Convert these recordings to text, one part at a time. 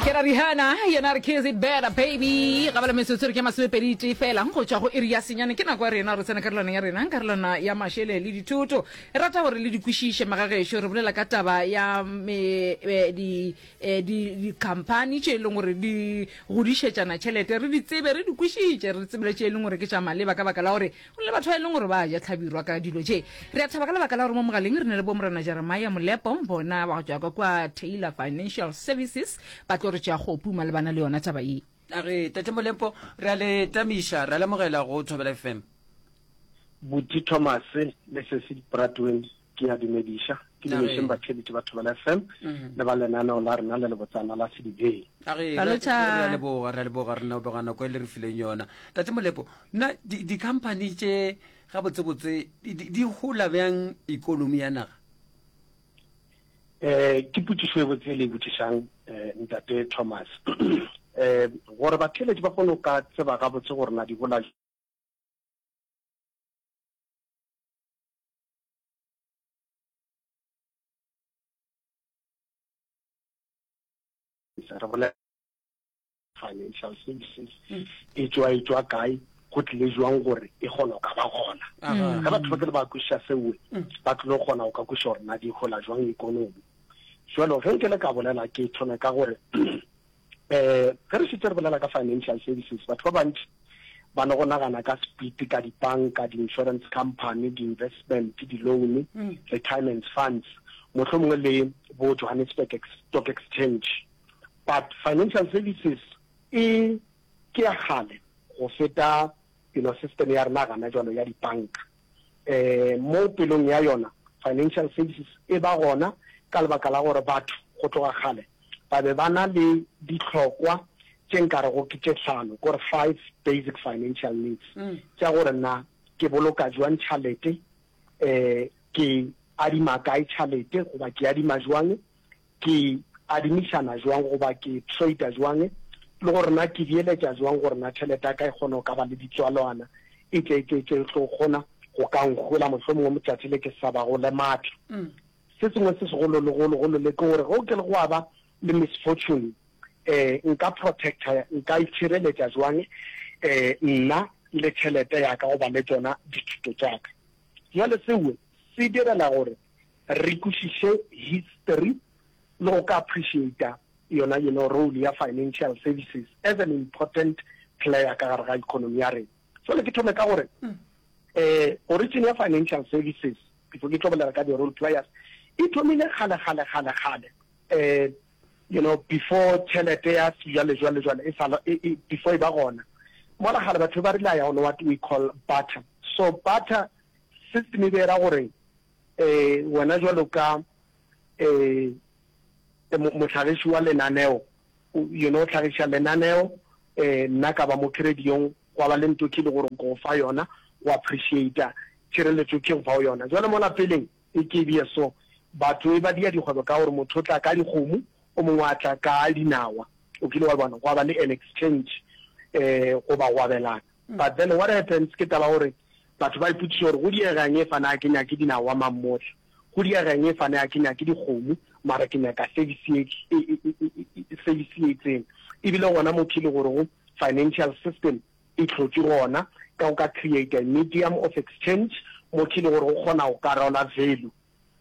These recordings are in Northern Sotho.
kera rihana yena re kiss it better baby ga bala metsotso re ke masomepedi tee fela go tšwa go iri ya senyane ke nako ya rena re tsena karolwana ya rena karolwana ya mašele le dithoto e rata gore le di kwešiše magagešo re bolela ka taba ya me- eh, di- eh, di- dikhamphani tše e leng gore di godišetšana tšhelete re di tsebe re di kwešiše re tsebile tše e leng gore ke tša maleba ka baka la gore go le batho ba e leng gore ba ja tlhabirwa ka dilo tše re a thaba ka lebaka la gore mo mogaleng re ne le bomorena jeremia molepo bona ba go tšwa ka kwa taylor financial services ba tlo re tšea kgopu malebana le yona taba ye a re tate molepo re a le tamiša re a lemogela go thobela fm buti thomas le sesi bradwin Ke a dumediša. Ke dumešeng batheletši ba Thobela FM mm-hmm. le ba lenaneo la rena le lebotsana la Sedibeng. Re leboga, re leboga re leboga nako e le re fileng yona. Tate Molepo, nna di-company tše gabotsebotse di gola bjang ikonomi ya naga? Eh, ke putsišo e botse le e botsišang eh, ntate Thomas. Eh, gore batheletši ba kgone go ka tseba gabotse gore na di gola re bolela financial services mm. e tswa e tswa kae go tlile jwang gore e kgona go ka ba gona ga batho ba ke le ba kwešiša seoe mm. ba tlile go kgona go ka kwešiša gore na di gola jwang ikonomi jalo ge nke le ka bolela ke thome ka gore Eh, ge re šetse re bolela ka financial services, batho ba bantši ba no go nagana ka speed ka dipanka, di-insurance company, di-investment, di-loan, mm. retirement funds, motlho mongwe le bo Johannesburg Stock Exchange. But financial services e ke ya gale go feta you know system ya rena gana jalo ya dipanka. um mo pelong ya yona financial services e ba gona ka lebaka la gore batho go tloga kgale ba be ba na le ditlhokwa tše nkarego ke tše tlhano kore five basic financial needs mm. tša gore na ke boloka jwang tšhalete um ke adima kae tšhalete goba ke adima jwang Ke adimišana jwang goba ke trader jwang le gore na ke beeletša jwang gore na tšhelete ya ka e kgone go ka ba le ditswalwana etšeetše tše e tlo kgona go ka nkgola mohlomongwe motšatši le ke sa ba go le matla. Se sengwe se segolo le golo golo le ke gore ge o ke le go a ba le misfortune um nka protector nka itšhireletša jwang um nna le tšhelete ya ka goba le tšona dithuto tša ka. Bjale seo se direla gore Re kwešiše history le go ka appreciata yona you know role ya financial services as an important player ka gare ga economy ya rena. Jwale ke thome ka gore eh origin ya financial services before ke tlo bolela ka di role players e thomile kgale kgale kgale kgale eh you know before tšhelete ya sejwale jwale jwale e sa e, e, before e ba gona mola gale batho ba rile ya gone what we call butter so butter system e be era gore Ee, wena jwalo ka ee, mohlagiši wa lenaneo, you know, hlagiša lenaneo, ee, nna ka ba mo kerediong, gwa ba le nto ke le gore nko go fa yona, go appreciata tšhireletšo ke go fa yona. Jwale mola peleng e ke bje so, batho e ba dia dikgwebo ka gore motho o tla ka dikgomo, o mongwe a tla ka dinawa, o kile wa e bona, gwa ba le an exchange, ee, goba go abelana. But then what happens ke taba ya gore Batho ba ipotšiša gore, Go diega eng ge fane a ke nyake dinawa mammotla? Go diega eng ge fane a ke nyake dikgomo, mara ke nyaka service ye, service ye itseng? E bile gona mo ke le gore go financial system e hlotšwe gona, ka o ka creator a medium of exchange mo ke le gore go kgona go karola value.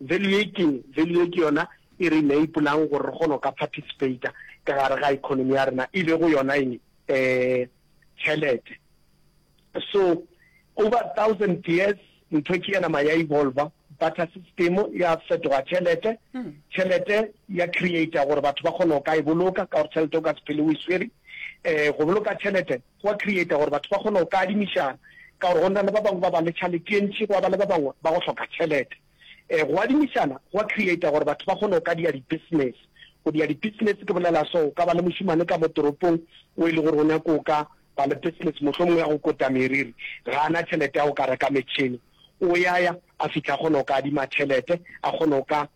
Value ye ke eng? Value ye ke yona e re enable'ang gore re kgone go ka participator ka gare ga economy ya rena, e lego yona eng? Um tšhelete. So over thousand years ntho e ke ya nama ya evolver, barter system ya fetoga tšhelete, tšhelete ya creator gore batho ba kgone go ka e boloka ka gore tšhelete o ka se phele o e swere. Um go boloka tšhelete Go a creata gore batho ba kgone go ka adimišana, ka gore go na le ba bangwe ba ba le tšhaletentši go a ba le ba bangwe ba go hloka tšhelete. E, go adimišana go a creata gore batho ba kgone go ka dia di-business. Go dia di-business ke bolela so, o ka ba le mošemane ka mo toropong o e le gore o nyaka go ka ba le business mohlomongwe ya go kota meriri, ga a na tšhelete ya go ka reka metšhene, o ya ya a fihla a kgona go ka adima tšhelete a kgone go ka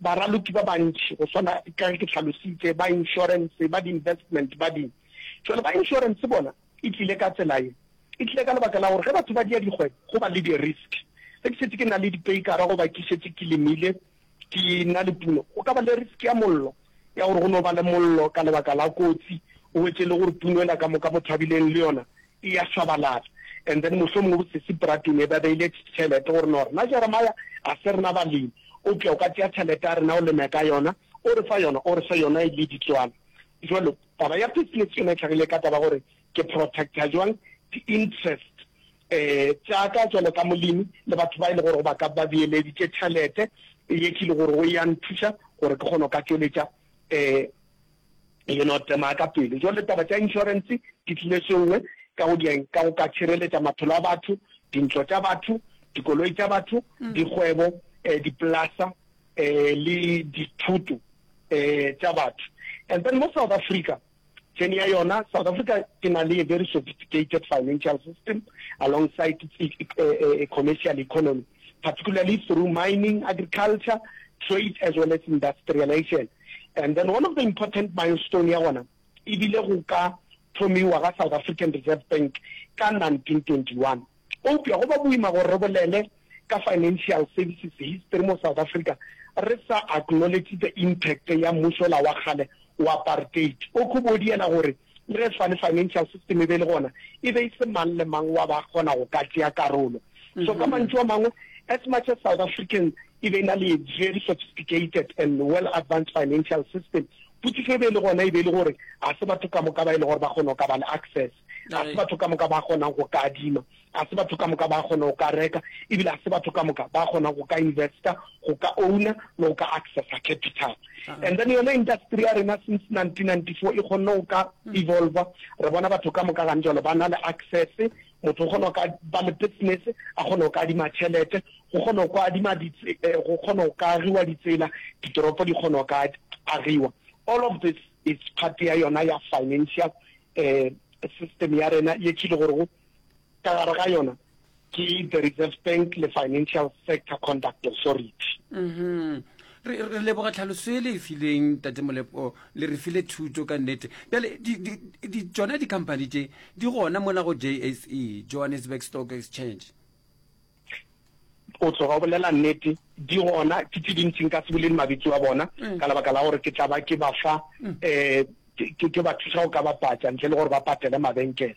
Baraloki ba bantši, go swana ka ge ke hlalositše, ba inšorense, ba di-investment, ba di. Bjale ba inšorense bona e tlile ka tsela ye. E tlile ka lebaka la gore ge batho ba dia dikgwebo, go ba le di-risk. Ge ke šetše ke na le dipeikara goba ke šetše ke lemile, ke na le puno, go ka ba le risk ya mollo, ya gore go no ba le mollo ka lebaka la kotsi, o hwetše e le gore puno yela ka moka Mothabileng le yona e ya šwabalatša and then mohlomongwe bosesi bratwe ne ba beile tšhelete gore no rena Jeremiah ga se rena balemi o pša o ka tšea tšhelete ya rena o leme ka yona o re fa yona o re fe yona e le ditswala jwalo taba ya business yona e tlhagile ka taba gore ke protecta jwang di interest eh tša ka jwalo ka molemi le batho ba e le gore go ba ka ba beeleditše tšhelete ye ke le gore go ya nthuša gore ke kgone go ka tšweletša eh E no tsemaa ka pelo. Jwale taba tša insurance di tlile sengwe ka go dieng ka go ka tšhireletša maphelo a batho, dintlo tša batho, dikoloi tša batho, dikgwebo, eh, dipolasa, eh, le dithuto, eh, tša batho. And then mo South Africa, tšheni ya yona, South Africa e na le a very sophisticated financial system alongside its e, e, e, e, commercial economy, particularly through mining, agriculture, trade as well as industrialization. and then one of the important milestone ya gona e bile go ka thomiwa ga south african reserve bank ka 1921 eupša go ba boima gore re bolele ka financial services history mo south africa re sa acknowledge the impact ya mmusola wa kgale wa apartheid o khobodiela gore Le ge fane financial system e be e le gona, e be e se mang le mang wa ba kgona go ka tšea karolo. So ka mantšu a mangwe, as much as South African e be e na le a very sophisticated and well advanced financial system, potšišo e be e le gona e be e le gore ga se batho ka moka ba e le gore ba kgona go ka ba le access, ga se batho ka moka ba kgonang go ka adima. Ga se batho ka moka ba kgona go ka reka, e bile ga se batho ka moka ba kgona go ka investa, go ka owner le go ka accessa capital. And then yona industry ya rena since 1994 e kgonne go ka evolver, re bona batho ka moka gane jalo ba na le access, motho o kgona go ka ba le business, a kgone go ka adima tšhelete, go kgona go ka adima go kgona go ka agiwa ditsela, ditoropo di kgona go ka agiwa. All of this is part ya yona ya financial system ya rena ye tšhile gore go. ka gare ga yona ke the reserve bank le financial sector conduct authority mm-hmm. re leboga tlhaloso e le e fileng tate molepo le re file thuto ka nnete bjale tsona di-company tše di gona mona go jse johannesburg stock exchange o tloga o bolela nnete di gona ke tse dintsi nka se boleng mabitso a bona mm. ka lebaka la gore ke tla ba ke ba fa um mm. eh, ke ba thusa go ka bapatsa ntle le gore ba patele mabenkele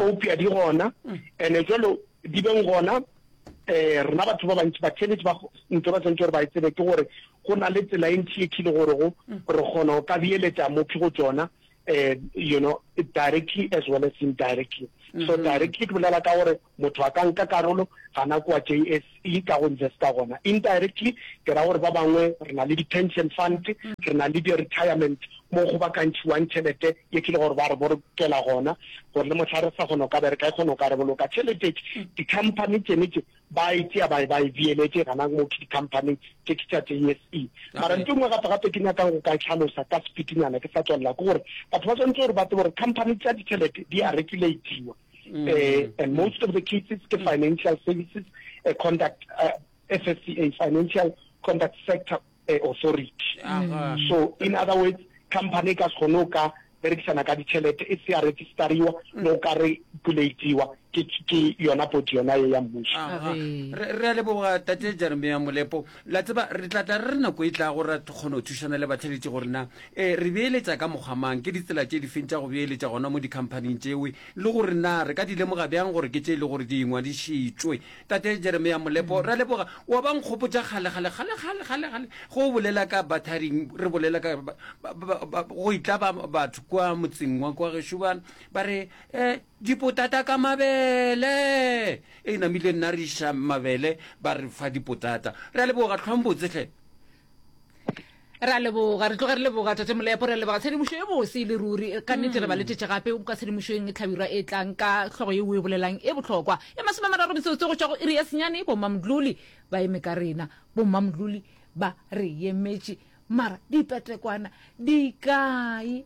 opia di gona mm. and-e jalo di beng gona um rena batho ba bantsi batheletse ba ntse ba tshwanetse gore ba e tsebe ke gore go na le tsela e ntsi e khile gore go re kgona go ka beeletsa mophi go tsona um you know directly as well as indirectly so mm-hmm. directly ke bolela ka gore Motho a ka nka karolo gana kua JSE ka go investa gona. Indirectly, ke ra gore ba bangwe re na le di-pension fund, re na le di-retirement mo go bakantšhiwang tšhelete ye ke le gore ba re bolokela gona gore le mohla re sa kgona go ka bereka e kgona go ka re boloka tšhelete. Di-company tšene tše ba e tšea ba e ba e beeletše gana mo ke di-company tše ke tša JSE. Mara nto e nngwe gape-gape ke nyakang go ka e tlhalosa ka sepitinyana ke sa tswalela ke gore batho ba swanetše gore ba tsebe gore company tša ditšhelete di a regulatiwa. mm. uh, and most of the cases ke financial services uh, conduct uh, FSCA financial conduct sector uh, authority uh -huh. so in other words company ka kgone o ka berekisana ka ditšhelete e se ya registariwa mm. no ka regulatiwa ke yona bodi yona ye ya mmuso re a leboga tate jeremia molepo La tseba, re tla tla re re nako e tlago ra kgona go thušana le batheletši gore na e, re beeletša ka mokgwa mang, ke ditsela tše difeng tša go beeletša gona mo dikhamphaning tšewe, le gore na re ka di lemoga bjang gore ke tše e le gore di ingwadišitšwe. Tate Jeremia Molepo, ra leboga. Wa ba nkgopotša kgale, kgale, kgale, kgale, kgale, kgale, ge o bolela ka batharing, re bolela ka, ba, ba, ba, ba, go itla ba, batho kua motseng wa kua gešo ba, ba re, eh, Dipotata ka mabele! Eina mile nna re iša mabele ba re fa dipotata. Re a leboga, tlhwang botse hle. Re a leboga, re tloge re leboga Tate Molepo, re a leboga tshedimošo ye bose e le ruri. Ka nnete re ba letetše gape ka tshedimošoeng e hlabirwa e tlang ka hlogo yeo o e bolelang e bohlokwa. E masome a mararo metsotso go tšwa go iri ya senyane, Bommamdluli ba eme ka rena. Bommamdluli ba re emetše, mara dipetekwana di kae?